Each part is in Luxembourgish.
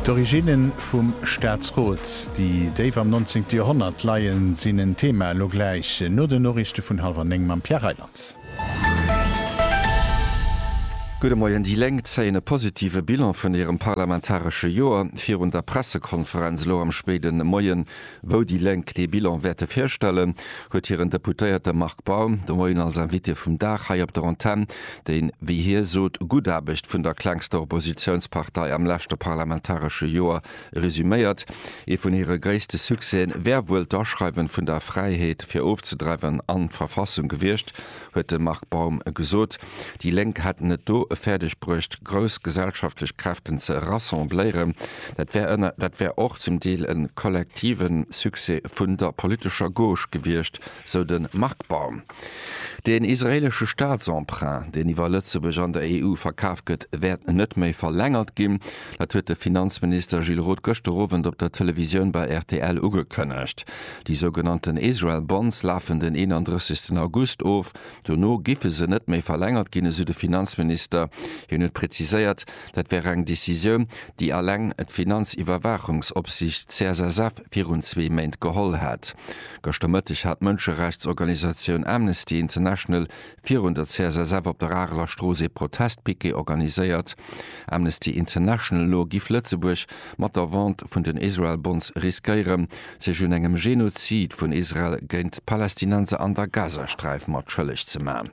D'Originne vum Staatsrot, déi déif am nonzéngte Joerhonnert leien, sinn en Thema elo gläich no den Noriichte vun hallwer néng mam Pierre Reyland. Gudde Moien, Déi Lénk zéien e positive Bilan vun hirem parlamentaresche Joer. Virun der Pressekonferenz elo am spéide Moien Wou déi Lénk dee Bilan wäerte virstellen, huet hiren Deputéierte Marc Baum de Moien als Invité vum Dag hei op der Antenn déi, wéi hie sot, gutt Aarbecht vun der klengster Oppositiounspartei am leschte parlamentaresche Joer resuméiert. Ee vun hire gréisste Succèsen wär wuel d'Aschreiwen vun der Fräiheet fir ofzedreiwen an d'Verfassung gewiescht, huet de Marc Baum gesot. Déi Lénk hätten et do fäerdeg bruecht, grouss gesellschaftlech Kräften ze rassembléieren. Dat wär och zum Deel e kollektive Succès vun der politescher Gauche gewiescht, sou de Marc Baum. Den israeelesche Staatsemprunt, deen iwwer Lëtzebuerg an der EU verkaf gëtt, wäert net méi verlängert ginn. Dat huet de Finanzminister Gilles Roth gëschter Owend op der Televisioun bei rtl ugekënnegt. Déi sougenannten Israel Bonds lafen den 31 August of. Dono giffe se net méi verlängert ginn, esou de Finanzminister. Hien huet preziséiert, dat wär eng Decisioun, déi alleng d'Finanziwwerwaachungsopsiicht CSSF virun zwee Méint geholl hätt. Gëschter Mëtteg hat d'Mënscherechtsorganisatioun Amnesty International Virun der CSSF op der Areler Strooss ee Protestpiquet organiséiert. Amnesty International no giff Lëtzebuerg mat der Vente vun den Israel Bonds riskéiere sech un engem Genozid vun Israel géint d'Palästinenser an der Gazasträif mat schëlleg ze man.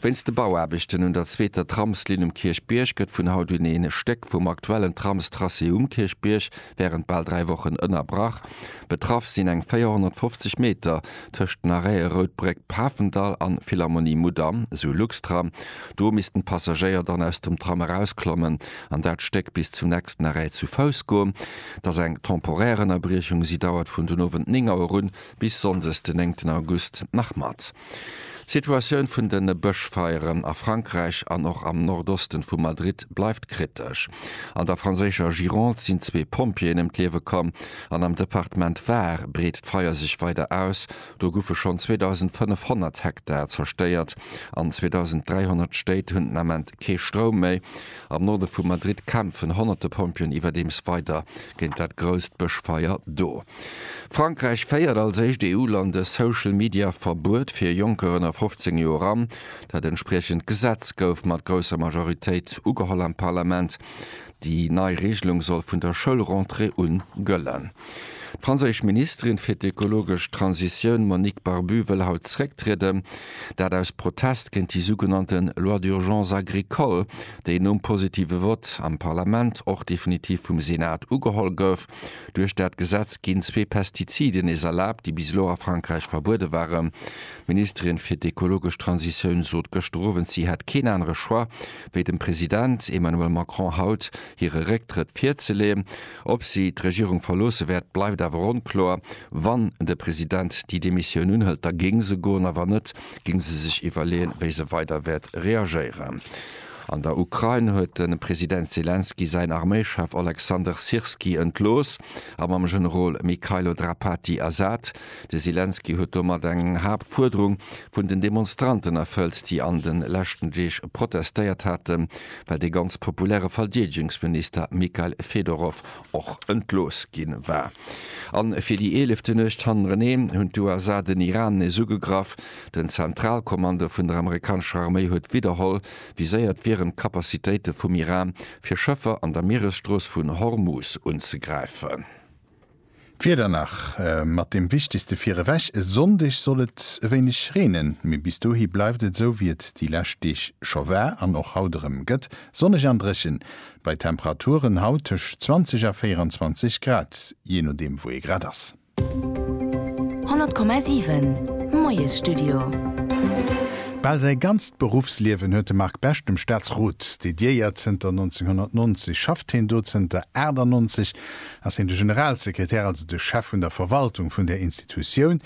Wéinst de Bauaarbechten un der zweeter Tramslinn um Kierchbierg gëtt vun haut un ee Stéck vum aktuellen Tramstracé um Kierchbierg Wärend bal dräi Wochen ënnerbrach. Betraff sinn eng 450 Meter tëscht den Arrête Routbréck, Pafendall an Philharmonie Mudam, sou Luxtram. Do missten d'Passagéier dann aus dem Tram erausklommen an dat Stéck bis zum nächsten Arrêt zu Fouss goen. Et ass eng temporär Ënnerbriechung. Si dauert vun den Owend 9 Auer un bis Sonndes den 9 August nach mat. D'Situatioun vun de Bëschfeieren a Frankräich an och am Nordosten vu Madrid bleift kritesch. An der franséischer Gironde sinn zwee Pompjeeën ëm d'Liewe komm an am Departement Var breet d'Feier sech weider aus. Do goufe schonn 2.500 Hektar zerstéiert an 2.300 Stéit hunn den Ament kee Stroum méi. Am Norde vu Madrid kämpfen honnerte Pompjeeën iwwerdeems weider géint dat grousst Bëschfeier do. Frankräich féiert als éischt EU-Land e Social Media Verbuet fir Jonker ënner 15 Joer an. Dat entspriechend Gesetz gouf mat grousser Majoritéit ugeholl am Parlament. Déi nei Reegelung soll vun der Schoulrentrée un gëllen. D'franséisch Ministerin fir d'ökologesch Transitioun Monique Barbu wëll haut zrécktrieden. Dat aus Protest géint déi sougenannte Loi d'urgence agricole, déi nom positive Vott am Parlament och definitiv vum Senat ugeholl gouf. Duerch dat Gesetz ginn zwee Pestiziden nees erlaabt, déi bis elo a Frankräich verbuede waren. D'Ministerin fir d'ekologesch Transitioun sot gëschter Owend, si hätt keen anere Choix, wéi dem President Emmanuel Macron haut hire Récktrëtt virzeleeën. Ob si d'Regierung verloosse wäert, bleift awer onkloer. Wann de President déi Demissioun unhëlt, da géing se goen, a wann net, géing se sech iwwerleeën, wéi se weider wäert reagéieren. An der Ukrain huet de President Selenskyj säin Arméischef Oleksandr Syrskyi entlooss a mam Generol Mykhailo Drapatyi ersat. De Selenskyj huet domat eng Haaptfuerderung vun den Demonstranten erfëllt, déi an de leschten Deeg protestéiert haten, well dee ganz populäre Verdeedegungsminister Mikhail Fedorov och entlooss gi war. A fir déi eelefte Nuecht hannereneen hunn d'USA den Iran nees ugegraff. Den Zentralkommando vun der amerikanescher Arméi huet widderholl viséiert wieren, d'Capacitéite vum Iran, fir Schëffer an der Mieresstrooss vun Hormuz unzegräifen. D'Wieder nach mat dem wichtegste virewech, e Sonndeg soll et e wéineg reenen, mee bis dohi bleift et esou wéi et déi lescht Deeg scho war an och haut erëm gëtt, sonneg an dréchen bei Temperaturen haut tëscht 20 a 24 Grad, jee nodeem wou ee grad ass. 100,7 Moiesstudio. Bal säi ganzt Beruffsliewen huet de Marc Best dem Staatsrot dediéiert. Zënter 1990 schafft hien do, zënter 98 ass hien de Generalsekretär, also de Chef vun der Verwaltung vun där Institutioun,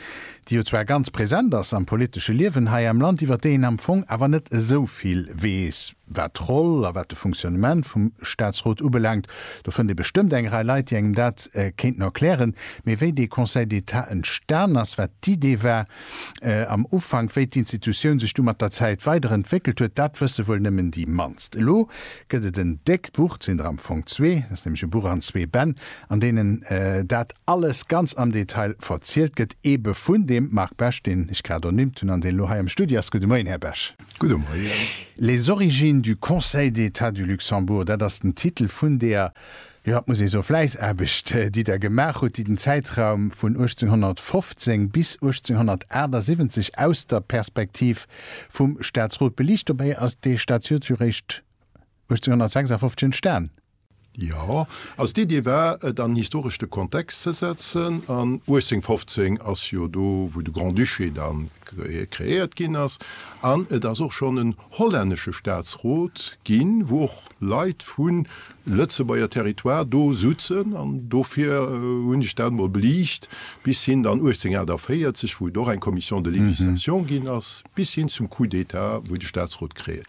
déi jo zwar ganz present ass am politesche Liewen hei am Land, iwwer déi een am Fong awer net esou vill weess, wat d'Roll a wat de Fonctionnement vum Staatsrot ubelaangt. Do fënnt ee bestëmmt eng Rei Leit, déi engem dat kéinten erklären. Mee wéi dee Conseil d'État entstan ass, wat d'Idee war, Am Ufank, wéi d'Institutioun sech du mat der Zäit weider entwéckelt huet, dat wësse wuel nëmmen déi mannst. Elo gëtt et en déckt Buch, et sinn der am Fong zwee, et ass nämlech e Buch an zwee Bänn, an deenen dat alles ganz am Detail verzielt gëtt, ebe vun deem Marc Bech, deen ech grad ernimmt hunn an deen elo hei am Studio ass. Gudde Moien, Här Bech. Gudde Moien. Les origines du Conseil d'État du Luxembourg, dat ass den Titel vun deer Jo, et muss ee soe, Fläissaarbecht, déi Der gemaach hutt, déi den Zäitraum vun 1815 bis 1878 aus der Perspektiv vum Staatsrot beliicht. Dobäi ass dee Statiot jo réischt 1856 entstan. Jo, also d'Iddi war, et an historeschte Kontext ze setzen. An 1815 ass jo do, wou de Grand-Duché da kreéiert ginn ass. An et ass och schonn en hollännesche Staatsrot ginn, wou och Leit vun Lëtzebuerger Territoire do sutzen an dofir hunn ech dat mol beliicht, bis hin dann 1848, wou et och eng Commission de législation ginn ass, bis hin zum Coup d'État, wou de Staatsrot kréien.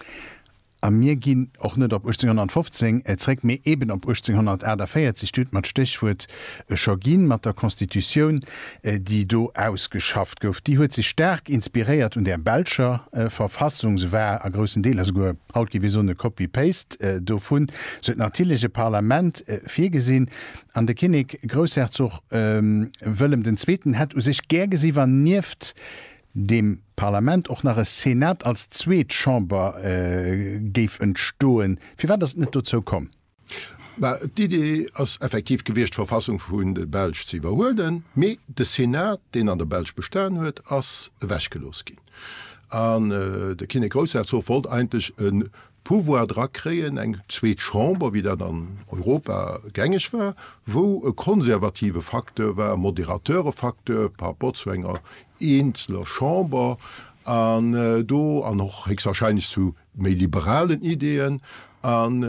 A mir ginn och net op 1815 zréck, mee eben op 1848. Dir hutt mer d'Stéchwuert scho ginn, mat der Constitutioun, déi do ausgeschafft gouf. Déi huet sech staark inspiréiert un der belscher Verfassung. Se war a groussen Deeler souguer Haut géif ee soen e Copy-Paste dovun. Sou huet natierlech e Parlament virgesinn. An de Kinnek, Groussherzog Wëllem den Zweeten, hätt u sech gär gesi wa nieft dem Parlament och nach e Senat als zweet Chamber géif entstoen. Firwat ass et net dozou komm? Mä d'Idee ass effektiv gewiescht, d'Verfassung vun de Belsch ze iwwerhuelen, mee de Senat, deen an der Belsch bestan huet, ass ewechgelooss ginn. An de Kinnek Groussherzog wollt eigentlech e Pouvoir dra kréien, eng zweet Chamber, wéi dat an Europa gängeg war, wou e konservative Facteur war, e moderateure Facteur par rapport zu enger eenzeler Chamber an do, an och héchstwahrscheinlech zu méi liberalen Ideeën an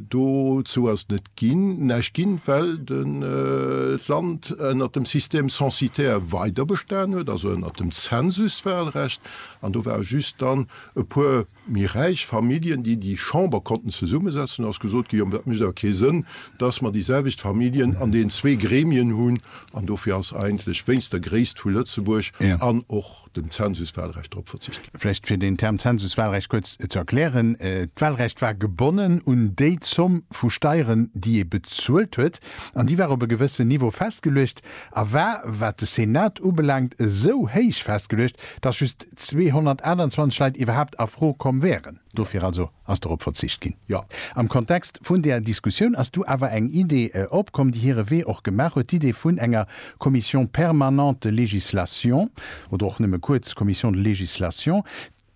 dozou ass net ginn, näischt ginn, well d'Land ënnert dem Système censitaire weider bestan huet, also ënnert dem Zensuswahlrecht. An do ware just dann e puer méi räich Familljen, déi déi Chamber konnten zesummesetzen. Do ass gesot ginn, jo mä dat mécht awer kee Sënn, dass mer déi selwecht Familljen an deenen zwee Gremien hunn. An dofir ass eigentlech wéinst der Gréisst vu Lëtzebuerg an och, dem Zensuswahlrecht drop verzicht ginn. Vläicht fir deen Term Zensuswahlrecht kuerz ze erklären, D'Wahlrecht war gebonnen un déi Zomm vu Steieren, déi ee bezuelt huet, an déi war op e gewëssen Niveau festgeluecht a war, wat de Senat ubelaangt, esou héich festgeluecht, datt just 228 Leit iwwerhaapt a Fro komm wären. Dofir also ass dorop verzicht ginn. Jo, am Kontext vun där Diskussioun ass du awer eng Idee opkomm, déi hire Wee och gemaach huet, d'Idee vun enger Commission permanente de législation oder och nëmme kuerz Commission de législation,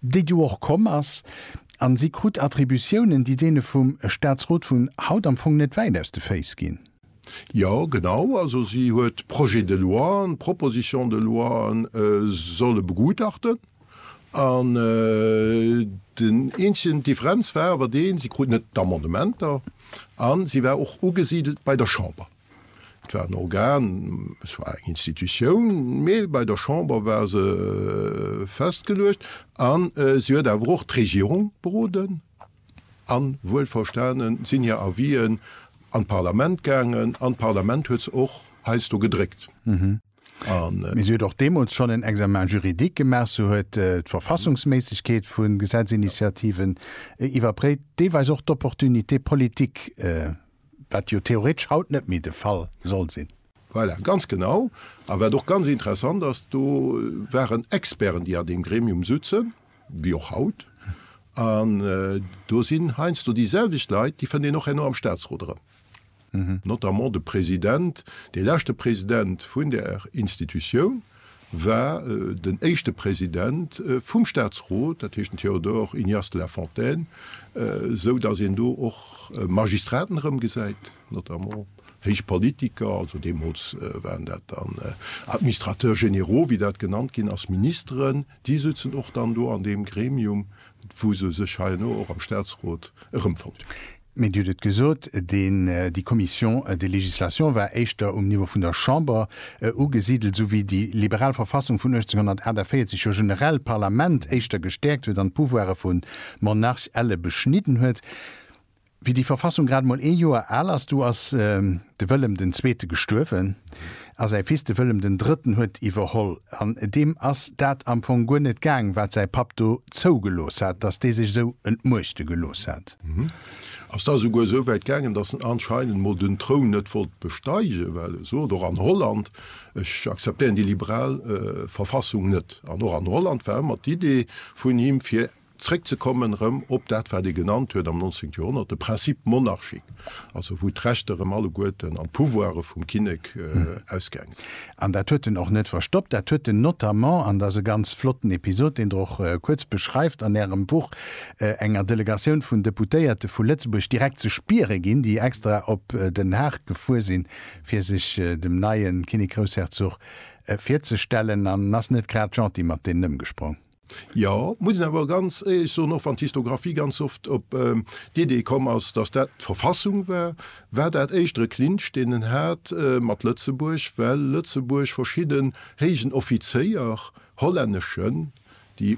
déi du och komm ass, a si krut Attributiounen, déi deene vum Statsrot vun haut am Fong net wäit aus de Féiss ginn. Jo, genau. Also si huet Projets de loien, Propositions de loien solle begutachten. An den eenzegen Differenz war awer deen, si kruten net d'Amendementer a si war och ugesidelt bei der Chamber. Et war en Organ, et war eng Institutioun, mee bei der Chamber war se festgeluecht a si huet awer och d'Regierung beroden a wuelverstanen sinn hir Avis'en an d'Parlament gaangen an d'Parlament huet se och heiansdo gedréckt. Mee si huet och deemools schonn en Examen juridique gemaach, se huet d'Verfassungsméissegkeet vu Gesetzinitiativen iwwerpréift, deelweis och d'Opportunité politique, wat jo theoretesch haut net méi de Fall soll sinn. Voilà, ganz genau. A wat och ganz interessant ass, do waren Experten, déi an deem Gremium sutzen, wéi och haut. An do sinn heiansdo déi selwecht Leit, déi fënnt een och herno am Statsrot erëm. Notamment de President, dee leschte President vun där Institutioun, war den éischte President vum Staatsrot, dat heescht den Théodore Ignace de la Fontaine, esou datt een do och Magistraten erëmgesäit, notamment héich Politiker, also deemools waren dat dann Administrateurs généraux, wéi dat genannt ginn ass, Ministeren, déi souzen och dann do an deem Gremium, wou se sech heianeau och am Staatsrot erëmfonnt hunn. Mir huet et gesot, deen, déi Commission de législation war éischter um Niveau vun der Chamber ugesidelt, esou wéi déi liberal Verfassung vun 1848 jo generell d'Parlament éischter gestäerkt huet an d'Pouvoire vu Monarch elle beschnidden huet. Wéi déi Verfassung grad emol ee Joer al ass, du ass de Wëllem den Zweete gestuerwen a säi Fils, de Wëllem den Drëtten, huet iwwerholl. An deem ass dat am Fong guer net gaang, wat säi Papp do zougelooss hat, dass dee sech esou entmuechte gelooss hat. Ass da souguer esou wäit gaangen, datt en anscheinend mol den Troun net wollt besteigen, well e sot, och an Holland, Ech akzeptéieren déi liberal Verfassung net. An och an Holland war ëmmer d'Idee vun him, fir zréckzekommen erëm op dat, wat e genannt huet am 19. Joerhonnert de Principe monarchique, also wou d'Rechter erëm alleguerten an d'Pouvoire vum Kinnek ausgaangen. An dat huet en och net verstoppt, dat huet en notamment, an dat ass e ganz flotten Episod, deen Der och kuerz beschreift an Ärem Buch, enger Delegatioun vun Deputéierte vu Lëtzebuerg direkt ze spiere ginn, déi extra op Den Haag gefuer sinn, fir sech dem neie Kinnek-Groussherzog virzestellen. En ass net grad gentil mat deenen ëmgesprong. Jo, muss een awer ganz éierlech soen, och wann d'Histographie ganz oft op d'Idee komm ass, datt dat d'Verfassung war, war dat éischter e Clinch, deen en hat mat Lëtzebuerg, well Lëtzebuerg verschidden héijen Offizéier, hollänneschen, déi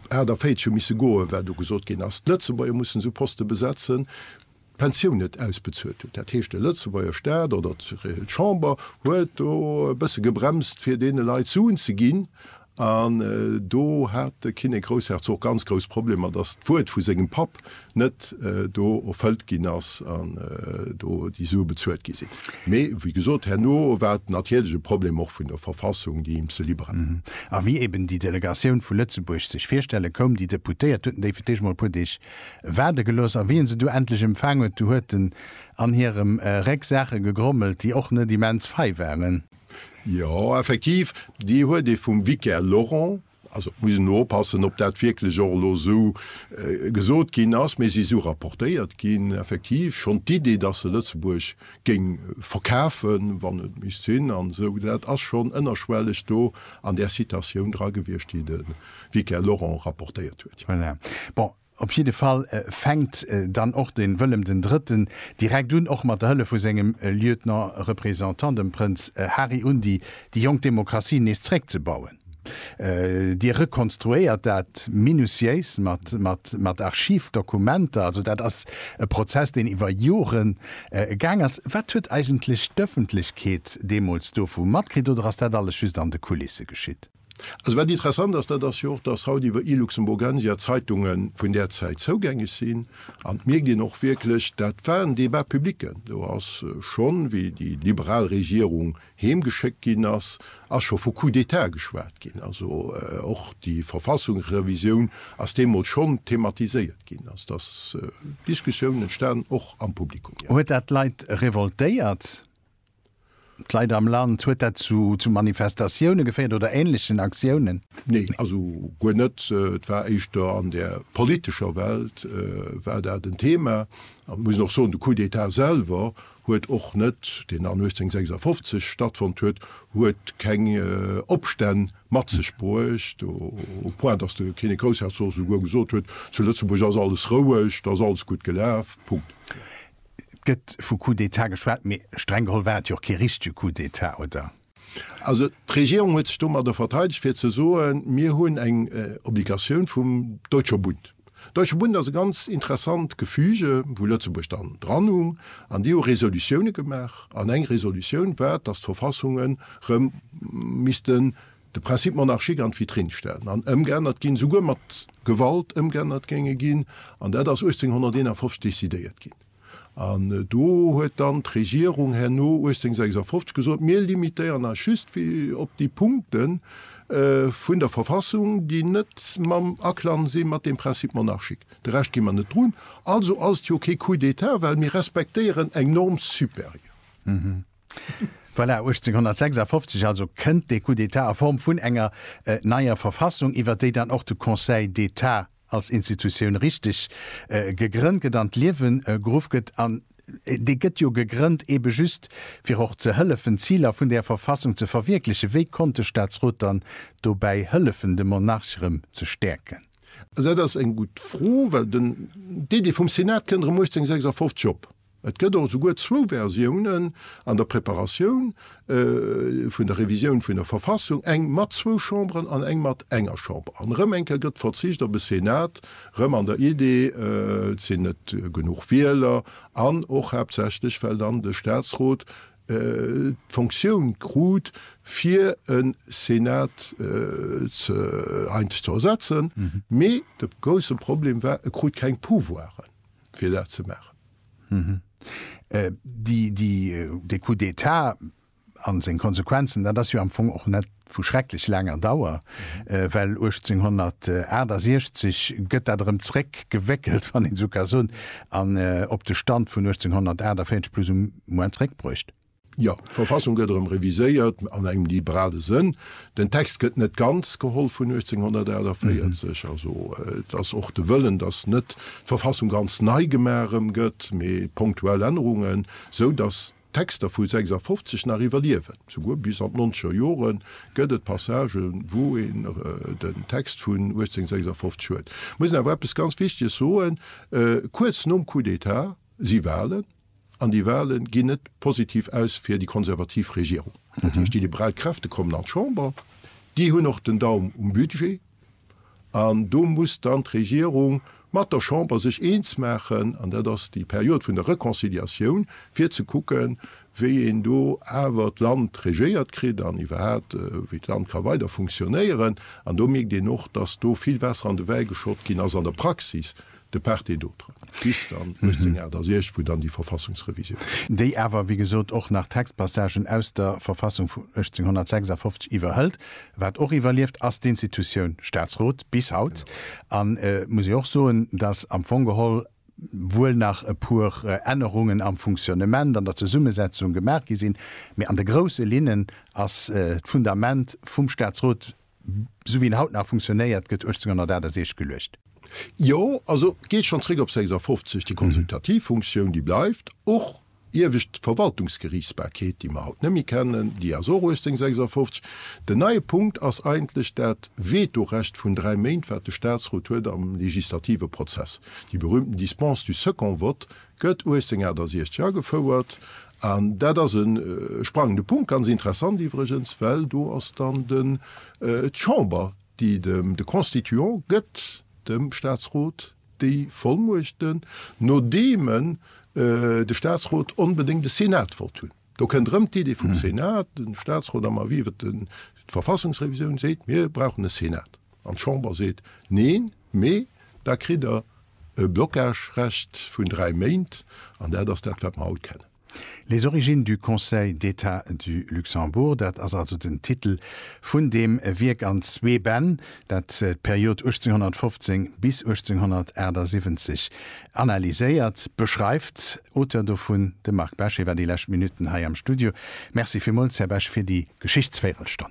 48 hu misse goen, well do gesot ginn ass, d'Lëtzebuerger mussen esou Poste besetzen, d'Pensioun net ausbezuelt huet. Dat heescht, de Lëtzebuerger Staat oder d'Chamber huet do e bësse gebremst, fir deene Leit Suen ze ginn. An do hat de Kinnek Groussherzog ganz grouss Problemer, datt d'Wuert vu sengem Papp net do erfëllt ginn ass an do déi Sue bezuelt gi sinn. Mee wéi gesot, herno war et natierlech e Problem och vun der Verfassung, déi him ze liber war. A wéi eeben déi Delegatioun vu Lëtzebuerg sech virstelle koum, déi Deputéiert hueten déi fir d'Eescht emol e puer Deeg waarde gelooss, a wéi en se du endlech empfaang huet, du huet en an hirem Réck Saache gegrommelt, déi och net immens fei waren. Jo, effektiv, déi huet ee vum Vicaire Laurent, also et muss een elo oppassen, ob dat wierklech och elo esou gesot ginn ass, mee se si esou rapportéiert ginn, effektiv schonn d'Idee, dass se Lëtzebuerg géing verkafen, wann et misst sinn an esou, dat ass schonn ënnerschwelleg do an där Citatioun dra gewiescht, déi de. wéi d'Claire Lorang rapportéiert huet. Voilà. Bon, op jidde Fall fänkt dann och de Wëllem den Drëtten direkt un, och mat der Hëllef vu sengem Lieutenant représentant, dem Prënz Hari un, déi déi jonk Demokratie nees zréckzebauen. Dir rekonstruéiert dat minutiéis mat, mat, mat Archivdokumenter. Also dat ass e Prozess, deen iwwer Jore gaang ass. Wat huet eigentlech d'Ëffentlechkeet deemools dovu matkritt oder ass dat alles just an de Kulisse geschitt? Also wat interessant ass, dat ass jo och, dass haut iwwer iLuxemburgensia d'Zeitunge vun där Zäit zougängeg sinn. An et mierkt een och wierklech, dat war en Débat public. Do ass schonn, wéi déi liberal Regierung heemgeschéckt ginn ass, ass scho vu Coup d'État geschwat ginn. Also och déi Verfassungsrevisioun ass deemools schonn thematiséiert ginn. Also et ass Diskussioun entstanen, och am Publikum, jo. Huet dat d'Leit revoltéiert? D'Leit am Land, huet dat zu Manifestatioune geféiert oder ähnlechen Aktiounen? Nee, also guer net. Et war éischter an der politescher Welt war dat en Thema. An muss och soen, de Coup d'État selwer huet och net, deen dann 1856 stattfonnt huet, huet keng Opstänn mat sech bruecht, au point, dass de Kinnek-Groussherzog souguer gesot huet, zu Lëtzebuerg ass alles roueg, da ass alles gutt gelaf. Punkt. Et gëtt vu Coup d'État geschwat, mee streng geholl war et jo och kee richtege Coup d'État, oder? Also d'Regierung huet sech domadder verteidegt, fir ze soen, Mir hunn eng Obligatioun vum Deutscher Bund. Deutscher Bund ass e ganz interessant Gefüge, wou Lëtzebuerg dann dranhung, an déi hu Resolutiounen gemaach. An eng Resolutioun war, dass d'Verfassungen erëm misste de Principe monarchique an d'Vitrine stellen an ëmgeännert ginn, souguer mat Gewalt ëmgeännert géinge ginn. An dat ass 1851 décidéiert ginn. An do huet dann d'Regierung herno 1856 gesot, Mir limitéieren eis just op déi Punkte vun der Verfassung, déi net mam Aklang si mat deem Principe monarchique. De Rescht gi mer net drun. Also ass et jo kee Coup d'État, well mir respektéieren eng Norme supérieure. Voilà, 1856 also kënnt dee Coup d'État a Form vun enger neier Verfassung, iwwer déi dann och de Conseil d'État als Institutioun richteg gegrënnt gëtt, an d'Liewe geruff gëtt. An dee gëtt jo gegrënnt eebe just, fir och ze hëllefen, d'Ziler vun där Verfassung ze verwierklechen. Wéi konnt de Staatsrot dann dobäi hëllefen, de Monarch erëm ze stäerken? Also dat ass eng gutt Fro, well den Dédé vum Senat kënnt erëm 1856 op. Et gëtt och esouguer zwou Versiounen an der Preparatioun vun der Revisioun vun der Verfassung, eng mat zwou Chamberen an eng mat enger Chamber. An erëm eng Kéier gëtt verzicht op e Senat, erëm an der Idee, et sinn net genuch Wieler an och haaptsächlech well dann de Statsrot d'Fonctioun krut, fir e Senat eideg ze ersetzen. Mee de grousse Problem war, e krut keng Pouvoiren. fir dat ze maachen. Dee Coup d'Etat a seng Konsequenzen, dat ass jo am Fong och net vu schrecklech laanger Dauer, well 1868 gëtt dat erëm zréck gewéckelt, wann een esou ka soen, an op de Stand vun 1848 plus ou moins zréckbruecht. Jo, d'Verfassung gëtt erëm reviséiert, an engem liberale Sënn. Den Text gëtt net ganz geholl vun 1848. Also et ass och de Wëllen, datt net d'Verfassung ganz nei gemaach erëm gëtt, mee ponktuell Ännerungen, sou datt d'Texter vu 56 nach iwwerliewen. Souguer bis an d'nonzeger Jore gëtt et Passagen, wou een den Text vun 1856 huet. Ech muss awer eppes ganz Wichteges soen, Kuerz nom Coup d'État si Wahlen. An déi Wale ginn net positiv aus fir déi konservativ Regierung. Dat heescht, déi liberal Kräfte kommen an d'Chamber, déi hunn och den Daum um Budget an do muss dann d'Regierung mat der Chamber sech eens maachen, an dat ass déi Period vun der Reconciliatioun, fir ze kucken, wéi een do awer d'Land regéiert kritt an iwwerhaapt wéi d'Land ka weider funktionéieren. An do mierkt een och, dass do vill Waasser an de Wäi geschott ginn ass an der Praxis, De part et d'autre bis dann 1868, wou dann déi Verfassungsrevisioun kënnt. Déi awer, wéi gesot, och nach Textpassagen aus der Verfassung vu 1856 iwwerhëlt. Wat och iwwerlieft, ass d'Institutioun Staatsrot bis haut. An et muss ee och soen, datt am Fong geholl wuel nach e puer Ännerungen am Funktionnement, an der Zesummesetzung gemaach gi sinn, mee an de grousse Linnen ass d'Fundament vum Staatsrot Sou wéi en haut nach funktionéiert, gëtt 1868 geluecht. Jo, also geet schonn zréck op 56. Déi konsultativ Funktioun, déi bleift, och iewescht d'Verwaltungsgeriichtsbarkeet, déi mer haut net méi kennen, déi ass och 1856. Den neie Punkt ass eigentlech dat Vetorecht vun dräi Méint, wat de Statsrot huet am legislative Prozess, déi berühmten Dispense du second vote, Gëtt 1868 agefouert an dat ass e sprangende Punkt. Ganz interessant iwwregens, well do ass dann den, d'Chamber, déi dem, de Constituant gëtt dem Staatsrot déi Vollmuechten, nodeem en, de Staatsrot onbedéngt e Senat wollt hunn. Do kënnt erëm d'Idee vum Senat. De Staatsrot am Avis iwwer d'Verfassungsrevisioun seet, mir brauchen e Senat. An d'Chamber seet, Neen! Mee da kritt Der e Blocage-Recht vun dräi Méint, an dat ass dat, wat mer haut kennen. Les origines du Conseil d'État du Luxembourg, dat ass also den Titel vun deem Wierk an zwee Bänn, dat d'Period 1815 bis 1878 analyséiert, beschreift. Auteur dovun de Marc Besch. Hie war déi lescht Minutten hei am Studio. Merci villmools, Här Besch, fir déi Geschichtsvéirelstonn.